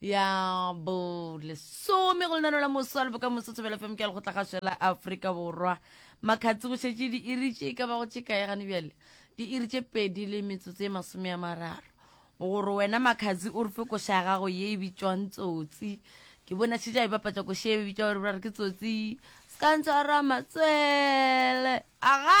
ya bo lesome go lenano la moso a leboka moso tshobela fm ke a legotla gaswe la aforika borwa makgatsi go šetše di iritše e ka ba go tšekae gane bjale di iritše pedi le metsotso e masome ya mararo gore wena makgatsi o re fe koša ya gago ye e bitšwang tsotsi ke bona šetše a e bapatša koša e bitšwa gore bra re ke tsotsi se ka ntshwara matswele aga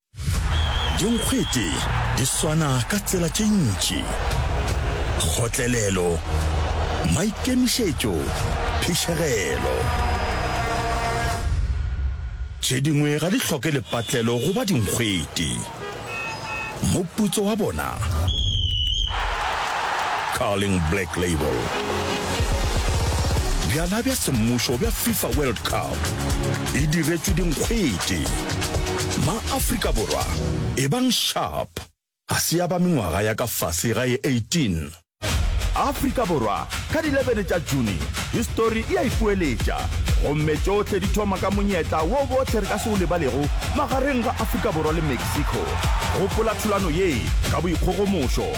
Dinkgwete di swana ka tsela tše ntši, kgotlelelo, maikemišetšo, phišegelo. Tše dingwe ga di hloke lepatlelo go ba dinkgwete. Moputso wa bona, Carling Black Label. Bjala bja semmušo bja FIFA World Cup. e diretšwe dinkgwete. Ma-Afrika Borwa, ebang sharp! Ga se ya ba mengwaga ya ka fase ga e 18. Afrika Borwa, ka di 11 tša June, histori e a ipoeletša, gomme tšohle di thoma ka monyetla wo bohle re ka se o lebalego magareng ga Afrika Borwa le Mexico. Gopola thulano ye ka boikgogomošo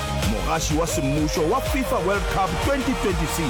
Mogaši wa semmušo wa FIFA World Cup 2026.